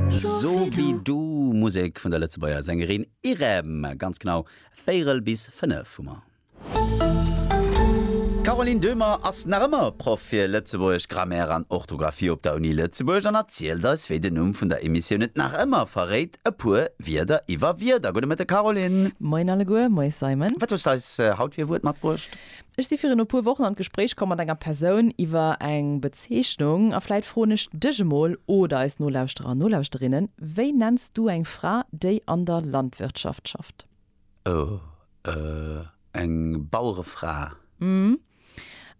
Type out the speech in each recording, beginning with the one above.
So wi du, Musek vun der Lëtzebuerger Sängerin Irem. Ganz genau véierel bis fënnef hu mer. D'Caroline Döhmer ass nach ëmmer Proff fir Lëtzebuergesch, Grammaire an Orthografie op der Uni Lëtzebuerg an erzielt eis, wéi den Numm vun der Emissioun et nach ëmmer verréit, e puer Wierder iwwer Wierder. Gudde Mëtteg Caroline. Moien alleguer. Moies Simon. Wat hues de eis haut fir e Wuert matbruecht? Ech si virun e puer Wochen an d'Gespréich komm mat enger Persoun iwwer eng Bezeechnung a vläit froen ech dech emol oder eis Nolauschterer an Nolauschterinnen, Wéi nenns du eng Fra, déi an der Landwirtschaft schafft? Oh, euh, eng Bauerefra. Mmh.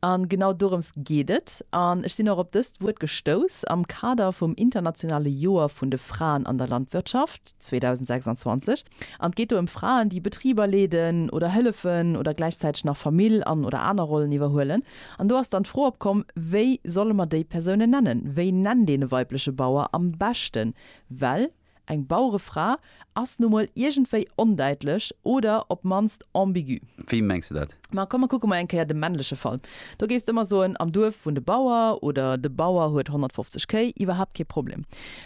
An genau dorëms geet et. An ech sinn och op dëst Wuert gestouss am Kader vum internationale Joer vun de Fraen an der Landwirtschaft. 2026 an et geet do ëm Fraen, déi Betriber leeden oder hëllefen oder gläichzäiteg nach Famill an oder aner Rollen iwwerhuelen. An do ass dann d'Fro opkomm, wéi solle mer déi Persounen nennen? Wéi nennt een e weibleche Bauer am beschten? Well eng Bauerefra ass nu mol iergendwéi ondäitlech oder op d'mannst ambigu. Wéi mengs de dat? Ma komm, mer kucke mol eng Kéier de männleche Fall. Do géifs de ëmmer soen, am Duerf wunnt e Bauer oder de Bauer huet 150 Kéi, iwwerhaapt kee Problem.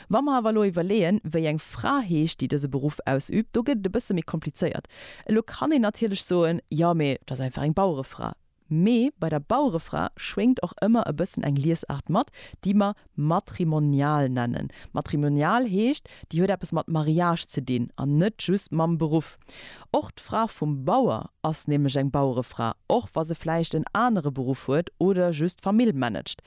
Wa mer awer elo iwwerleeën, wéi eng Fra heescht, déi dëse Beruff ausübt, do gëtt et e bësse méi komplizéiert. Elo kann een natierlech soen, jo, mee dat ass einfach eng Bauerefra. Mee bei der Bauerefra schwéngt och ëmmer e bëssen eng Liesaart mat, déi mer. matrimonial nennen. Matrimonial heescht, déi huet eppes mat Mariage ze dinn an net just mam Beruff. Och d'Fra vum Bauer ass nämlech eng Bauerefra, och wa se vläicht en anere Beruff huet oder just d'Famill managt.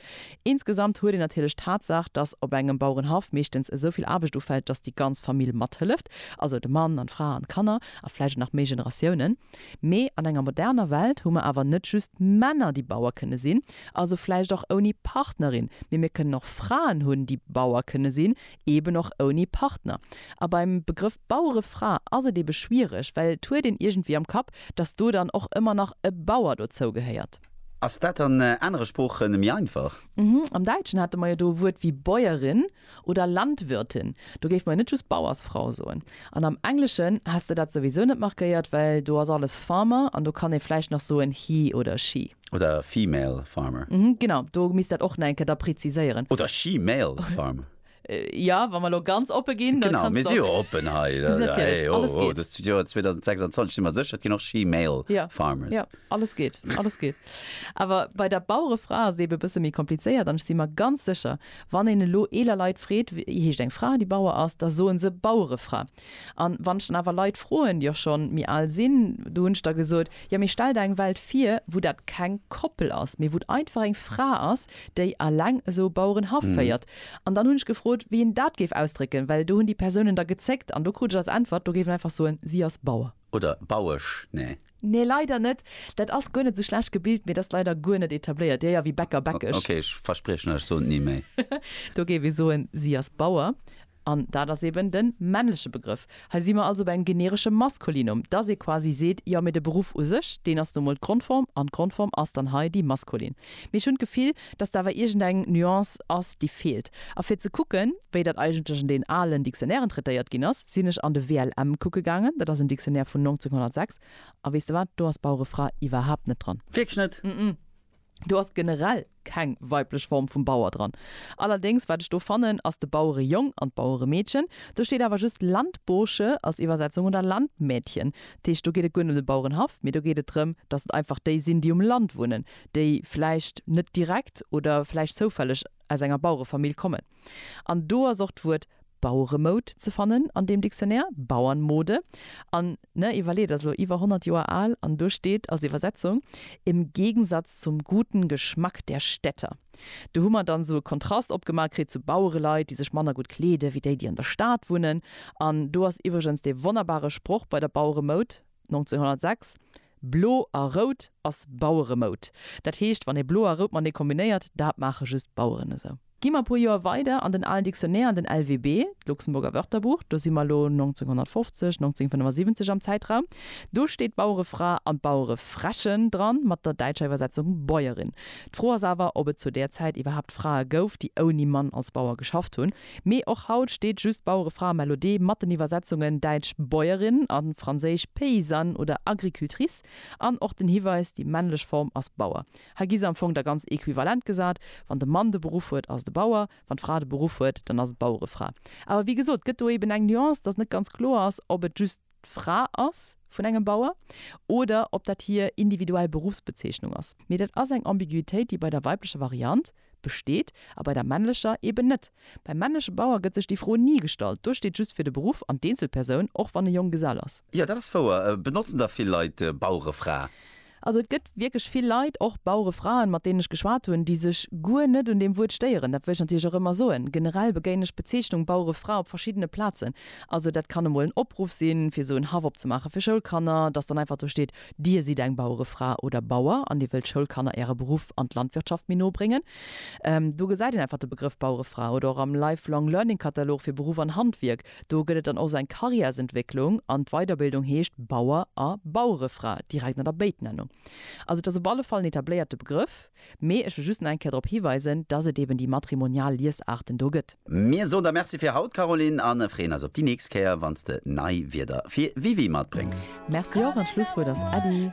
Insgesamt huet een natierlech d'Tatsaach, dass op engem Bauerenhaff meeschtens esou vill Aarbecht ufält, dass déi ganz Famill mathëlleft, also de Mann an d'Fra an d'Kanner a vläicht och nach méi Generatiounen. Mee an enger moderner Welt hu mer awer net just Männer, déi Bauer kënne sinn. Also vläicht och ouni Partnerin, mee mir kënnen och Fraen hunn, déi Bauer kënne sinn, eeben och ouni Partner. A beim Begrëff Bauerefra ass et eebe schwiereg, well et huet een iergendwéi am Kapp, datt do dann och ëmmer nach e Bauer dozou gehéiert. Ass dat an anere Sprooche méi einfach? Am Däitschen hate mer jo do e Wuert wéi Bäuerin oder Landwirtin, do géife mer jo net just Bauersfrau soen. An am Engleschen häss de dat souwisou net markéiert, well do ass alles Farmer an do kann ee vläicht nach soen he oder she. Oder female farmer. Mhm, genau, do misst dat och nach eng Kéier da preziséieren. Oder she-male farmer. Jo, wa mer elo ganz oppe ginn, da kannst du och. Genau, mir si jo oppen hei. Mir si natierlech, alles geet. Hey, ho, ho, dëst Joer 2026 si mer sécher, et ginn och she-male farmers. Jo, jo, alles geet, alles geet. Awer bei der Bauerefra ass et ebe e bësse méi komplizéiert. An ech si mer ganz sécher, wann een elo eeler Leit freet, wéi heescht eng Fra, déi Bauer ass, da soe se Bauerefra. An wann ech dann awer Leit froen, déi och schonn méi al sinn, do hunn ech da gesot, jo mee stell der eng Welt vir, wou dat keng Koppel ass, mee wou et einfach eng Fra ass, déi alleng esou e Bauerenhaff féiert. An dann hunn ech gefrot, wéi een dat géif ausdrécken, well do hunn déi Persounen da gezéckt an do krut ech als Äntwert, do géif een einfach soen, si ass Bauer. Oder Bauesch, nä? Nee, leider net. Dat ass guer net esou schlecht gebilt, mee et ass leider guer net etabléiert. Dir, ja, wéi Bäcker, Bäckesch. Okay, ech verspriechen lech, ech soen et ni méi. Do géif ee soen, si ass Bauer. An dat ass eben de männleche Begrëff. Hei si mer also bei engem generesche Maskulinum, dass ee quasi seet, jo, mee de Beruff u sech, deen ass nu emol d'Grondform, an d'Grondform ass dann hei déi maskulin. Mee ech hunn d'Gefill, dass do awer iergendeng Nuance ass, déi feelt. A fir ze kucken, wéi dat eigentlech an deenen alen Dictionnairen traitéiert ginn ass, sinn ech an de WLM kucke gaangen. Dat ass en Dictionnaire vun 1906. A weess de wat, do ass Bauere Fra iwwerhaapt net dran. Wierklech net? Ëmëm. Do ass generell keng weiblech Form vum Bauer dran. Allerdéngs, wat ech do fannen, ass de Bauerejong an d'Baueremeedchen. Do steet awer just Landbursche als Iwwersetzung oder Landmädchen. Dat heescht, do geet et guer net ëm de Bauerenhaff, mee do geet et drëm, dass et einfach déi sinn, déi um Land wunnen. déi vläicht net direkt oder vläicht zoufälleg aus enger Bauerefamill kommen. An do ass och d'Wuert Baueremoud ze fannen an deem Dictionnaire, Bauernmode. An, ne, iwwerleet, ass elo iwwer 100 Joer al an do steet als Iwwersetzung, im Gegensatz zum guten Geschmack der Städter. Do hu mer dann esou e Kontrast opgemaach kritt zu Bauereleit, déi sech manner gutt kleeden, wéi déi, déi an der Stad wunnen. An do ass iwwregens dee wonnerbare Sproch bei der Baueremoud, 1906, Blo a rout ass Baueremoud. Dat heescht, wann ee blo a rout matenee kombinéiert, dat maache just d'Baueren esou. Gi mer e puer Joer weider an den alen Dictionnaire, an den LWB, d'Luxemburger Wörterbuch, do si mer elo 1950, 1975 am Zäitraum, do steet d'Bauerefra an d'Bauerefräche dran, mat der däitscher Iwwersetzung Bäuerin. D'Fro ass awer, ob et zu där Zäit iwwerhaapt Frae gouf, déi ouni Mann als Bauer geschafft hunn. Mee och haut steet just d'Bauerefra Melodee mat den Iwwersetzungen däitsch Bäuerin a franséisch paysanne oder agricultrice an och den Hiweis, déi männlech Form ass Bauer. Hei gi se am Fong da ganz equivalent gesat, Wann de Mann de Beruff huet, ass et e Bauer, wann d'Fra de Beruff huet, dann ass et d'Bauerefra. Awer wéi gesot, et gëtt do eeben eng Nuance, dass net ganz kloer ass, ob et just. d'Fra ass vun engem Bauer oder ob dat hir individuell Beruffsbezeechnung ass. Mee dat ass eng Ambiguitéit, déi bei der weiblecher Variant besteet a bei der männlecher eeben net. Beim männleche Bauer gëtt sech déi Fro ni gestallt, do steet just fir de Beruff an d'Eenzelpersoun, och wann e Jonggesell ass. Jo, dat ass wouer. Benotzen da vill Leit Bauerefra? Also et gëtt wierklech vill Leit, och Bauerefraen, mat deenen ech geschwat hunn, déi sech guer net un deem Wuert stéieren. Dat wëll ech natierlech och ëmmer soen. Generell begéinen ech d'Bezeechnung Bauerefra op verschiddene Plazen. Also dat kann emol en Opruff sinn, fir esou en Haff opzemaache fir Schoulkanner, dass dann einfach do steet, Dir sidd eng Bauerefra oder Bauer an Dir wëllt Schoulkanner Äre Beruff an d'Landwirtschaft méi no bréngen. Do gesäit een einfach de Begrëff Bauerefra. Oder och am Life-Long-Learning-Katalog fir Beruff an Handwierk. Do gëtt et dann och sou eng Karriärsentwécklung an d'Weiderbildung heescht Bauer a Bauerefra direkt an der Béitnennung. Also et ass op alle Fall en etabléierte Begrëff, mee ech wëll just nach eng Kéier drop hiweisen, dass et eben déi matrimonial Liesaarten do gëtt. Mir soen der Merci fir haut, Caroline, a freeën eis op déi nächst Kéier, wann s de nei Wierder fir Wiwi matbréngs. Merci och an d'Schlusswuert ass Äddi.